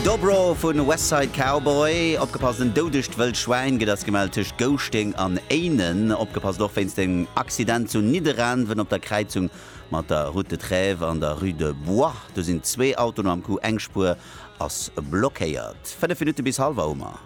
Dobro vun West Side Cowboy. Opgepasst, en doudegt wëllt Schwäin gëtt ass gemellt tëscht Gouschteng an Éinen. Opgepasst och wéinst engem Accident zu Nidderaanwen op der Kräizung mat der Route de Trèves an der Rue de Bois. Do sinn zwee Autoen am Coup, eng Spuer ass blockéiert. Fënnef Minutte bis halwer hu mer.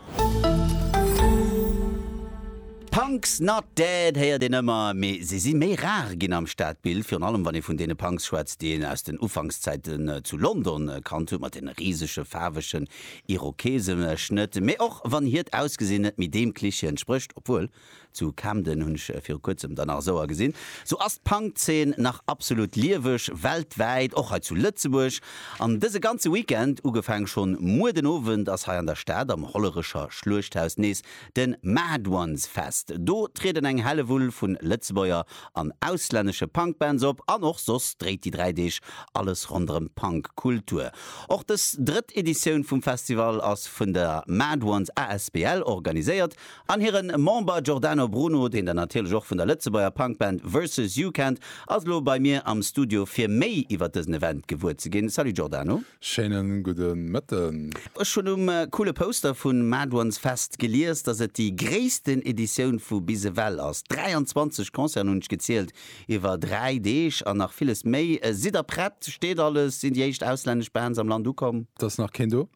Punks not dead héiert een ëmmer, mee se si méi rar ginn am Stadbild, virun allem wann ee vun deene Punks schwätzt, déi een aus den Ufankszäiten zu London kannt huet, mat deene risege faarwegen Irokeseschnëtt, mee och wann hiert Ausgesinn net méi deem Cliché entsprécht, obwuel, zu Camden hunn ech viru kuerzem der nach esou agesinn, sou ass d'Punkzeen nach absolut lieweg, weltwäit, och hei zu Lëtzebuerg an dëse ganze Weekend, ugefaang schonn muer den Owend, ass hei an der Stad am Hollerecher Schluechthaus nees De Mad Ones Fest, do trieden eng Hellewull vu Lëtzebuerger an auslännesche Punkbands op an och soss dréit déi 3 Deeg alles ronderëm d'Punkkultur. Och dës drëtt Editioun vum Festival ass vun der Mad Ones asbl organiséiert an hire Member Giordano Bruno, deen der natierlech och vun der Lëtzebuerger Punkband Versus You kennt, ass elo bei mir am Studio fir méi iwwer dësen Event gewuer ze ginn. Salut Giordano. Schéinen gudden Mëtten. Ech hunn um coole Poster vun Mad Ones Fest gelies, dass et déi gréissten Editioun vu bis ewell ass. 23 Concerten hunn ech gezielt iwwer 3 Deeg an nach villes méi. Sidd der prett? Steet alles? Sinn déi éischt auslännesch Bands am Land ukomm? Et ass nach keen do.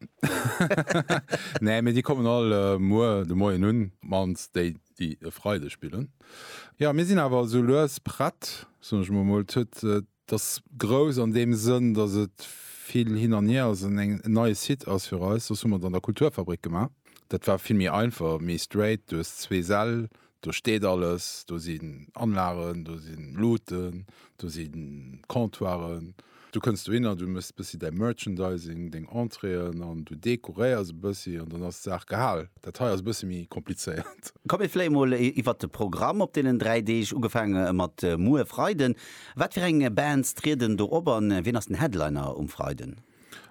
Nee, mee déi kommen all muer de Moien un, mannst déi, déi e Freide spillen. Jo, mir sinn awer esou lues prett, soen ech mer emol. Et ass grouss an deem Sënn, datt et vill hin an hier ass an en neie Site ass fir eis. Soss hu mer et an der Kulturfabrik gemaach. Dat war vill méi einfach, méi straight. Do hues zwee Säll, do steet alles, do sinn Anlagen, do si Luuten, do si Comptoiren. Du kënns dohinner, du méchs e bëssi däi Merchandising, deng Entréeën an du dekoréiers e bëssi an dann ass d'Saach gehal. Dat hei ass e bësse méi komplizéiert. Komm mir fléi mol iwwert de Programm op deenen dräi Deeg, ugefaange mat muer Freiden. Wat fir eng Bands trieden do op an wien ass den Headliner um Freiden?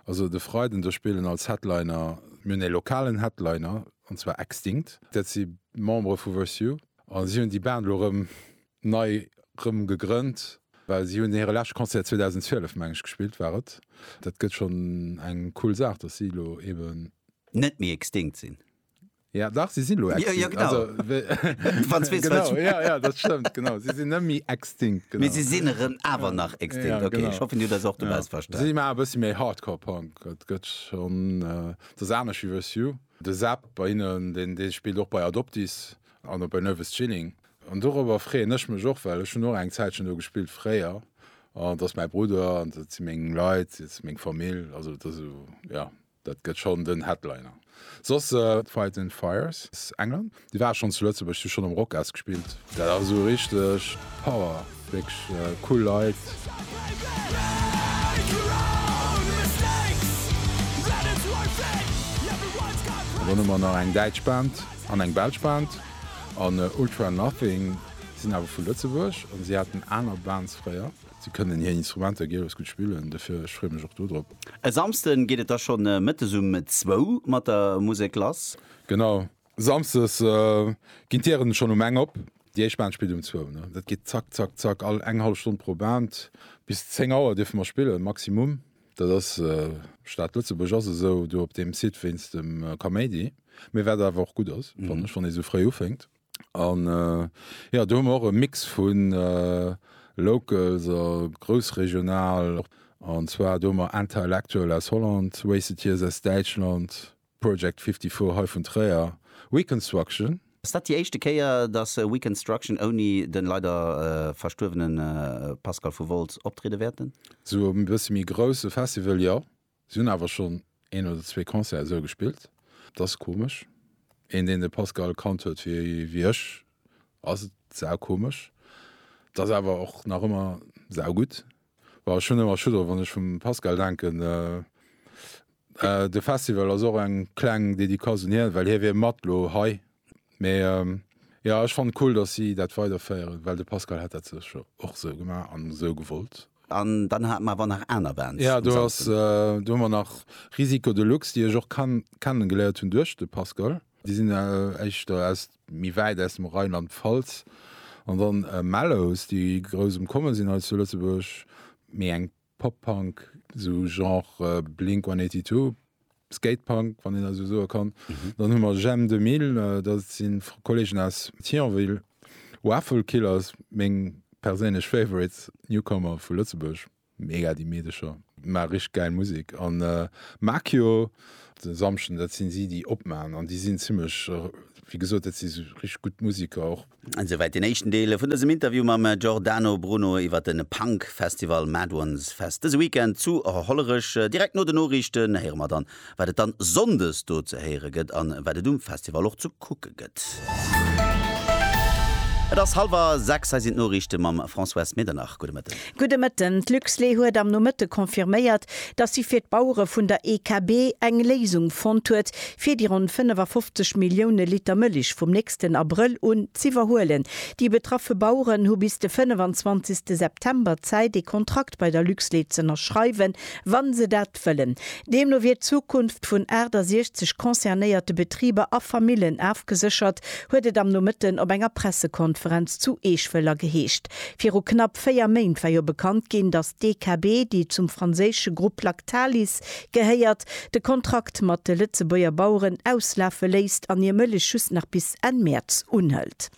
Also de Freiden do spillen als Headliner, mir hunn ee lokalen Headliner an zwar Extinct, dat si Membere vu Verse You an si hunn déi Band elo rëm nei rëm gegrënnt, well si hunn hire leschte Concert 2012 meng ech gespillt war et. Dat gëtt schonn eng cool Saach, datt si elo eben. Net méi Extinct sinn. Ja dach si si lo extinct. Ja, ja genau. Also, Franzwee genau, ja, ja, dat stëmmt genau. Si sinn net méi extinct. Genau. Mee si sinn erëm awer nach extinct. Ja, okay, genau. ech hoffen, Dir hutt eis och dobauss ja. verstanen. Si maache e bëssi méi Hardcore Punk. Dat gëtt schonn. Dat ass anescht wéi With You. De Seb bei hinnen, deen, dee spillt och bei Adoptees an op bei Nervous Chilling. An dorobber freeën ech mech och, well ech hunn och eng Zäitchen do gespillt fréier. An dat ass mäi Brudder an dat si meng Leit, dat ass meng Famill. Also dat ass esou, ja. Dat gëtt schonn den Headliner. Soss Fight and Fires aus England. Déi war schonn zu Lëtzebuerg, si schonn um Rockes gespillt. Dat ass esou richteg Power, wierklech cool Leit. Dann hu mer nach eng däitsch Band an eng belsch Band. An Ultra Nothing sinn awer vu Lëtzebuerg an si haten aner Bands fréier. Si kënnen hir Instrumenter gielefs gutt spillen, dofir ech freeë mech och do drop. E Samsden geet et da schonn Mëttes um zwou mat der Musek lass. Genau, Samsdes ginn d'Dieren schonn um eng op. Déi éischt Band spillt um zwou. Dat geet zack, zack, zack, all eng hallef Stonn pro Band. Bis zéng Auer dierfe mer spillen, Maximum. Dat ass Stad Lëtzebuerg ass esou do op deem Site wéinst dem Kaméidi, mee wat awer och gutt ass, fanne ech, wann ee sou fréi ufänkt. An jo, do hu mer och e Mix vu Locals a groussregional. An zwar do hu mer Intellectual aus Holland, Wasted Years aus Däitschland, Project 54 hei vun Tréier, We Construction, Ass dat déi éischte Kéier, datt We Construction ouni de leider verstuerwene Pascal vu Wolz optriede wäerten? Zu e bësse méi grousse Festival, jo. Si hunn awer schonn een oder zwee Concerten esou gespillt. Et ass komesch. Een, deen de Pascal kannt huet wéi ech, ass et saukomesch. Et ass awer och nach ëmmer saugutt. Well ech hunn ëmmer Schutt drop, wann ech vum Pascal denken. De Festival ass och eng kleng Dedicace un hien, well hie wier mat elo hei Mais euh, ja, ech fand cool, dass si dat weiderféieren, well de Pascal hat dat sécher och sou gemaach an sou gewollt. An dann haten mer awer nach aner Bands. Ja, do ass, euh, do hu mer nach Risiko Deluxe, déi ech och kann, kennen geléiert hunn duerch de Pascal. Déi sinn euh, éischter aus méi wäit aus dem Rheinland-Pfalz. An dann euh, Mellows, déi grouss um Kommen sinn hei zu Lëtzebuerg, méi eng Pop-Punk, sou Genre Blink 182, Skate-Punk, wann een dat esou soe kann. Dann hu mer J'aime 2000, dat si Kolleegen aus Thionville. Waffle Killers, meng perséinlech Favorites, Newcomer vu Lëtzebuerg, mega déi Meedecher, maache richteg gäil Musek. An Makio de Samschden, dat si si, déi opmachen an déi sinn zimmlech, wéi gesot, dat si richteg gutt Museker och. Esouwäit den éischten Deel vun dësem Interview mam Giordano Bruno iwwer de Punk Festival Mad Ones Fest dëse Weekend zu Hollerech. Direkt no den Noriichten héiere mer dann, wat et dann Sonndes do ze héiere gëtt an wat et um Festival och ze kucke gëtt. Et ass hallwer 6, hei sinn d'Noriichte mam Françoise Medernach. Gudde Mëtten. Gudde Mëtten. D'Luxlait huet am Nomëtte confirméiert, datt si fir d'Bauere vun der EKB eng Léisung fonnt huet, fir déi ronn 55 Millioune Liter Mëllech vum nächsten Abrëll un z'iwwerhuelen. Déi betraffe Baueren hu bis de 25. September Zäit, ee Kontrakt bei der Luxlait z'ënnerschreiwen, wa se dat wëllen. Deemno wier d'Zukunft vun 68 concernéierte Betriber a Famillen afgeséchert, huet et am Nomëtten op enger Pressekonferenz zu Eeschwëller geheescht. Viru knapp véier Méint war jo bekannt ginn, datt d'DKB, déi zum franséische Grupp Lactalis gehéiert, de Kontrakt mat de Lëtzebuerger Baueren auslafe léisst an hir Mëllech just nach bis Enn Mäerz unhëlt.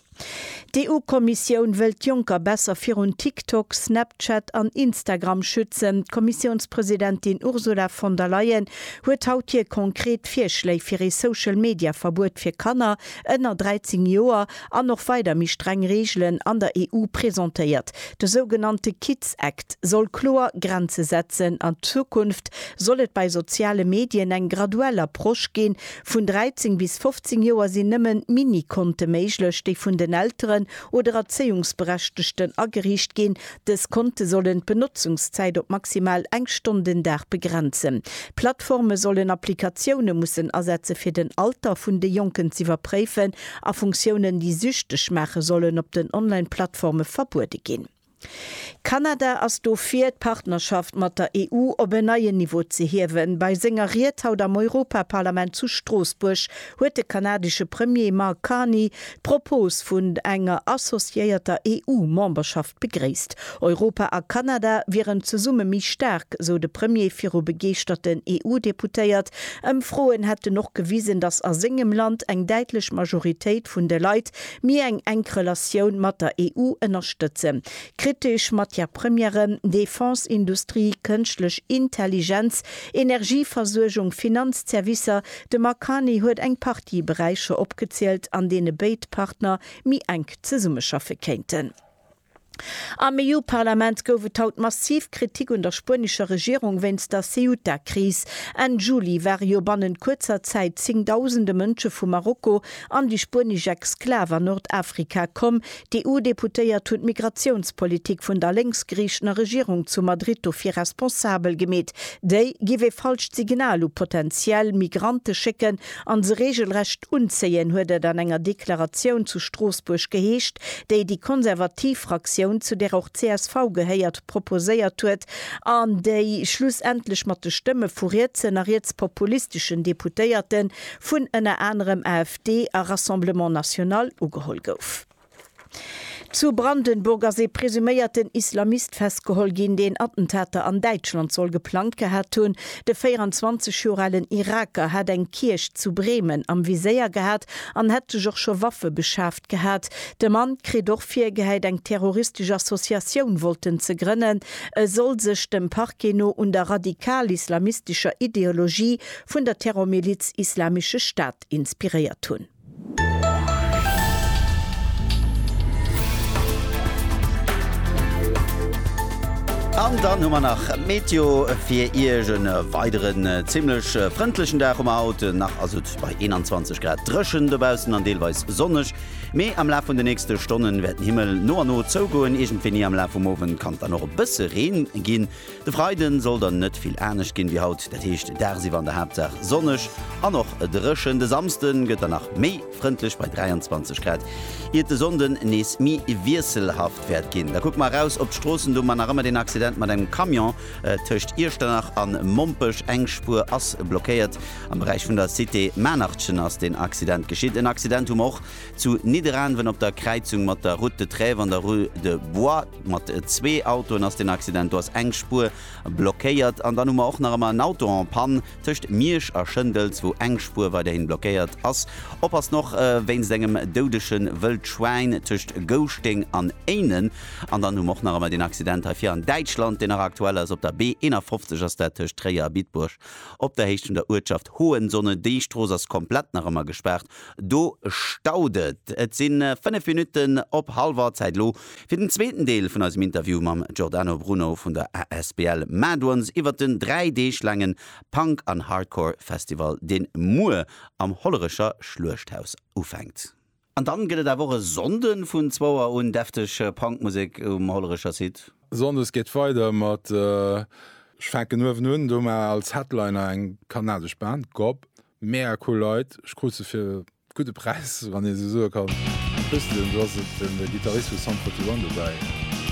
D'EU-Kommissioun wëllt d'Jonker besser virun TikTok, Snapchat an Instagram schützen. D'Kommissiounspresidentin Ursula von der Leyen huet haut hir konkret Virschléi fir ee Social-Media-Verbuet fir Kanner ënner 13 Joer An och weider méi streng Reegelen an der EU presentéiert. De sougenannte Kids Act soll kloer Grenze setzen. An Zukunft soll et bei soziale Medien eng graduell Approche ginn. Vun 13 bis 15 Joer sinn nëmmen Mini-Konte méiglech, déi vun den Elteren oder Erzéiungsberechtegten ageriicht ginn. Dës Konte sollen d'Benotzungszäit op maximal eng Stonn den Dag begrenzen. Plattforme sollen Applikatioune mussen asetze fir den Alter vun de Jonken z'iwwerpréifen A Funktiounen, déi süchteg maachen, sollen op den Online-Plattforme verbuede ginn. Kanada ass dofir, d'Partnerschaft mat der EU op en neien Niveau ze hiewen. Bei senger Ried haut am Europaparlament zu Stroossbuerg huet de kanadesche Premier Mark Carney d'Propos vun enger associéierter EU-Memberschaft Begréisst. Europa a Kanada wieren zesumme méi staark, sou de Premier viru begeeschterten EU-Deputéiert. Ëmfroen hätten och gewisen, datt a sengem Land eng däitlech Majoritéit vun de Leit méi eng enk Relatioun mat der EU ënnerstëtzen. Kritesch, Matière-Premieren, Defense, Industrie, Kënschtlech Intelligenz, Energieversuergung, Finanzservicer, de Mark Carney huet eng Partie Beräicher opgezielt, an deene béid Partner méi enk zesummeschaffe kéinten. Am EU-Parlament gouf et haut massiv Kritik un der spuenescher Regierung wéinst der Ceuta-Kris. Enn Juli ware jo bannent kuerzer Zäit zéngdausende Mënsche vu Marokko an déi spuenesch Exklav an Nordafrika komm. D'EU-Deputéiert hunn d'Migratiounspolitik vun der lénksgeriechener Regierung zu Madrid dofir responsabel gemeet. Déi giff ee falscht Signal u potentiell Migrante schécken an se regelrecht unzéien, huet et an enger Deklaratioun zu Stroossbuerg geheescht, déi déi konservativ Fraktioun, zu där och csv gehéiert, proposéiert huet an déi schlussendlech mat de Stëmme vu rietsen a rietspopulisteschen Deputéierte vun ënner anerem AfD a Rassemblement National ugeholl gouf. Zu Brandenburg ass ee presuméierten Islamist festgeholl ginn, deen Attentater an Däitschland soll geplangt gehat hunn. De 24 Joer alen Iraker hat eng Kierch zu Bremen am Viséier gehat an hätt sech och scho Waffe beschaaft gehat. De Mann kritt och virgehäit, eng terroristesch Associatioun wollten ze grënnen. E soll sech dem Parquet no un der radikal-islamistescher Ideologie vun der Terrormiliz Islamische Staat inspiréiert hunn. An dann hu mer nach Meteo fir Iech. E weideren zimmlech frëndlechen Dag hu mer haut nach, ass et bei 21 Grad dréchen dobaussen an deelweis sonneg. Mee am Laf vun de nächste Stonne wäert den Himmel no a no zougoen, iergendwéini am Laf vum Owend kann et dann och e bësse Reen ginn. De Freiden soll dann net vill anescht ginn wéi haut, dat heescht dagsiwwer an der Haaptsaach sonneg an och dréchen. De Samsden gëtt dann nach méi frëndlech bei 23 Grad, iert de Sonnden nees méi wiesselhaft wäert ginn. Da kucke mer eraus op d'Stroossen, do mar nach ëmmer deen Accident mat engem Camion tëscht Iechternach an Mompech. Eng Spuer ass blockéiert. Am Beräich vun der Cité Maarnachchen ass deen Accident geschitt. En Accident hu mer och zu Nidderaanwen op der Kräizung mat der Route de Trèves an der Rue de Bois. Mat zwee Autoen ass den Accident, do ass eng Spuer blockéiert. An dann hu mer och nach ëmmer en Auto en panne tëscht Miersch a Schëndels, wou eng Spuer weiderhin blockéiert ass. Oppassen och wéinst engem doudege Wëldschwäin tëscht Gouschteng an Éinen. An dann hu mer och nach ëmmer den Accident hei vir an Däitschland, deen nach aktuell ass. Op der B 51 ass dat tëscht Tréier a Bitburg op der Héicht vun der Uertschaft Hohensonnen. Déi Strooss ass komplett nach ëmmer gespaart, do staut et. Et si fënnef Minutten op Halwer Zäit elo. Fir den zweeten Deel vun eisem Interview mam Giordano Bruno vun der asbl Mad'Ones iwwert den 3 Deeg laange Punk an Hardcore Festival deen muer am Hollerecher Schluechthaus ufänkt. An dann gëtt et awer och e Sonnden vun zwouer un defteg Punk Musek um Hollerecher Site. Sonndes geet et weider mat, ech fänken uewen un, do mar als Headliner eng kanadesch Band, Gob, mega cool Leit, ech krut se fir. Gudde Präis, wann ee sou soe kann. Wéi wësst Dir, do ass et de Gittarist vu Sum 41 dobäi.